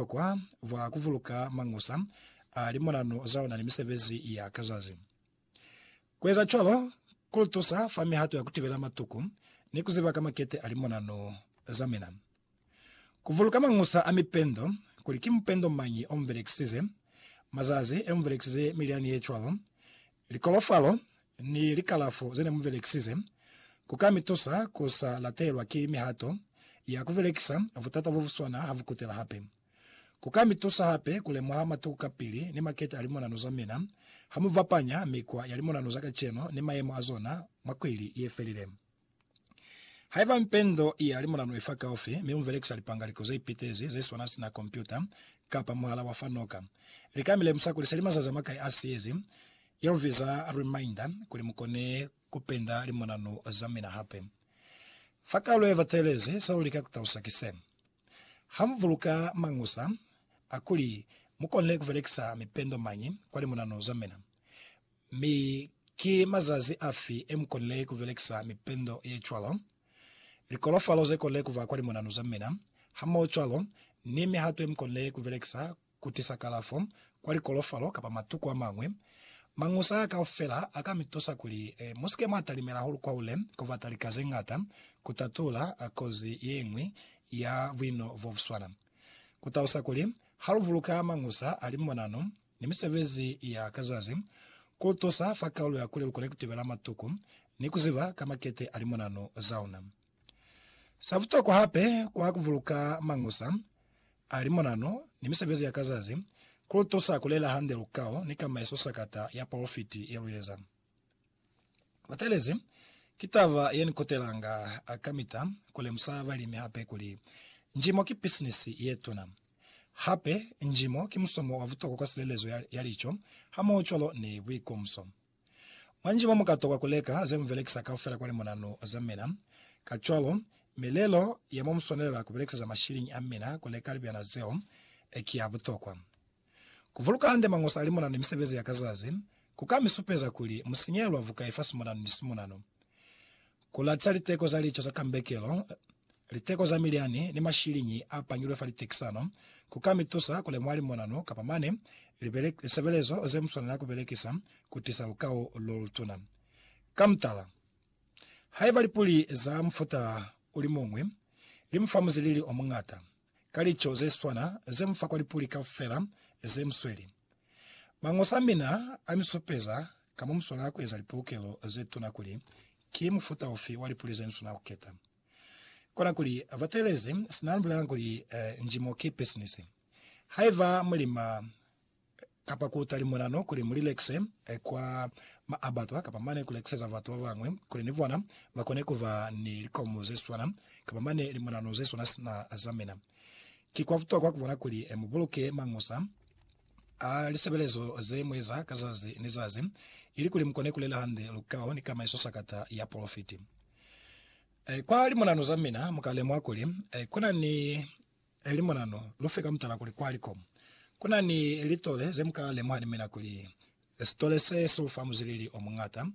butokwa bwa kuvuluka mañusa a limonano zaona ni misebezi ya ka zazi. Kueza cwalo kulutusa fa mihato ya kutibela matuku ni kuziba ka makete a limonano zamina. Kuvuluka mañusa a mipendo, kuli ki mupendo mañi ombelekisize, mazazi emumbelekisize mi liani yecwalo, likolofalo, ni likalafo ze ne mu belekisize, ku ka mi tusa ku sa latelwa ki mihato ya ku belekisa butata bo bu swana ha bu kutela hape. Ku ka mi tusa hape ku lemuha matuku kapili ni makete a limonano za mina ha mu bapanya mikwa ya limonano za kacenu ni mayemo a zona mwa kwili ye felile. Haiba mpendo ya limulanu ifa kaufi, mi muvelekisa lipangaliko zeipitezi zeswana sina kompyuta kapa muhala wa fa noka, lika milemusa kuli seli mazazi amakai asiyezi, yelubiza reminder, kuli mukone kupenda limulanu zamina hape. Fa kaulo yebatelezi, selulika kutalusa ki se, Hamubuluka mañusa akuli mukone kuvelekisa mipendo mañi kwa limulanu zamina, Mi ki mazazi afi e mu konile ku belekisa mipendo ye cwalo? Likolofalo ze konile ku ba kwa limonanu za mina, hamoho cwalo ni mihato ye mu konile ku belekisa ku tisa kalafo kwa likolofalo kapa matuku a mañwi, mañusa a kaufela a ka mi tusa kuli mu si ke mwa talimela hahulu kwaule ku bata lika ze ñata ku tatula kozi ye ñwi ya buino bo bu swana. Ku talusa kuli, ha lu buluka mañusa a limonano ni misebezi ya ka zazi, ku tusa fa kaulu ya kuli lu kone ku tibela matuku ni ku ziba ka makete a limonano za luna. Sa butokwa hape kwa ku buluka mañusa a limonano ni misebezi ya ka zazi, ku lu tusa ku lela hande lukao ni kama ye sosakata ya polofiti ye lu eza. Batelezi, Ki taba ye ni kutelanga kamita ku lemusa balimi hape kuli njimo ki bisinisi ye tuna. Hape, njimo ki musomo wa butokwa kwa silelezo ya lico hamohocwalo ni buikomso. Mwa njimo mu ka tokwa ku leka ze mu belekisa kaufela kwa limunanu za mina. Kacwalo, milelo ya mo mu swanelela ku belekiseza mashiliñi a mina ku leka libyana zeo ki ya butokwa. Ku vuluka hande Mañosa a limonano ni misebezi ya ka zazi ku ka mi supeza kuli mu sinyehela bukai fa simonano ni simonano. Ku latiza liteko za lico za kambekelo, liteko za milyani, ni mashiliñi a pangilwe fa litekisano ku ka mi tusa ku lemuha limonano kapa mane lisebelezo ze mu swanela ku belekisa ku tiisa lukao lo lutuna. Ka mutala, haiba lipuli za mufuta o li muñwi li mu fa muzilili o muñata, ka lico ze swana ze mu fa kwa lipuli kaufela ze mu sweli. Mañosa a mina a mi supeza ka mo mu swanela ku eza lipolokelo ze tuna kuli ki mufuta ufi wa lipuli ze ni swanela ku keta. Kona kuli, Batelezi, sina ni bulelanga kuli, Njimo ki pisinisi. Haiba mu lima, kapa ku utali mulano kuli mu lilekise kwa maabatwa kapa mane ku lekiseza batu ba bañwi kuli ni bona ba kone ku ba ni likomu ze swana kapa mane limulano ze swana sina za mina. Ki kwa butokwa ku bona kuli mu buluke mañusa a lisebelezo ze mu eza ka zazi ni zazi ilikuli mu kone ku lela hande lukao ni kamaiso sakata ya polofiti. Kwa limulano za mina mu ka lemuha kuli ku na ni Eli mona no lu fe ka mutala kuli kwa likomu ku na ni litole ze mu ka lemuha ni mina kuli sitole se si lu fa muzwilili o muñata,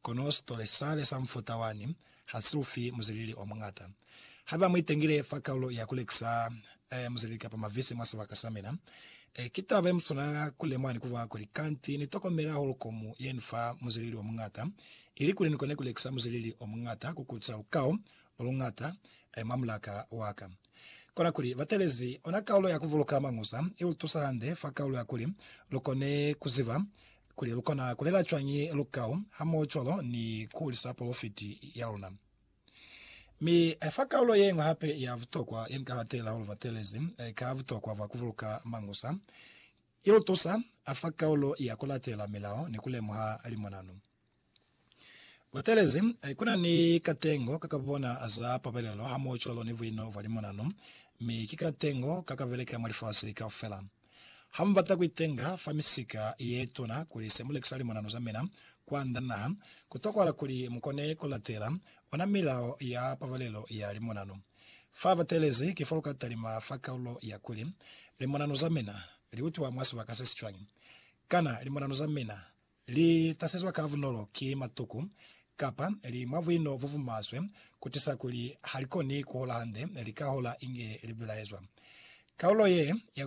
kono sitole sale sa mufuta wani ha si lu fi muzwilili o muñata. Haiba mu itengile fa kaulo ya ku lekisa muzwilili kapa mavisi mwa sibaka sa mina, ki taba ye muswana ku lemuha ni ku bala kuli, Kanti ni tokomela hahulu komu ye ni fa muzwilili o muñata, ili kuli ni kone ku lekisa muzwilili o muñata ku kuca lukao lo luñata mwa mulaka wa ka. Kona kuli ba talezi ona kaulo ya ku buluka Mañusa i lu tusa hande fa kaulo ya kuli lu kone ku ziba kuli lu kona ku lela cwañi lukau hamohocwalo ni ku hulisa polofiti ya luna. Mi fa kaulo ye ñwi hape ya butokwa ye ni ka hatela hahulu batelezi ka butokwa bwa ku buluka Mañusa i lu tusa fa kaulo ya ku latela milao ni ku lemuha limonanu. Butelezi, Kuna ni katengo ka ka bona za pabelelo hamoho cwalo ni buino bwa limonano, mi ki katengo ka ka beleka mwa lifasi kaufela. Ha mu bata ku itenga fa misika ye tuna kuli se mu lekisa limonano za mina kwand'a naha, ku tokwahala kuli mu kone ku latela ona milao ya pabelelo ya limonano. Fa batelezi ki fo lu ka talima fa kaulo ya kuli, Limonano za mina li utwa mwa sibaka se si cwañi? kana Limonano za mina Li tasezwa ka bunolo ki matuku, kapa li mwa buino bo bumaswe, kutisa kuli halikoni kuhola hande, lika hola inge libelaezwa. Kaulo ye ya.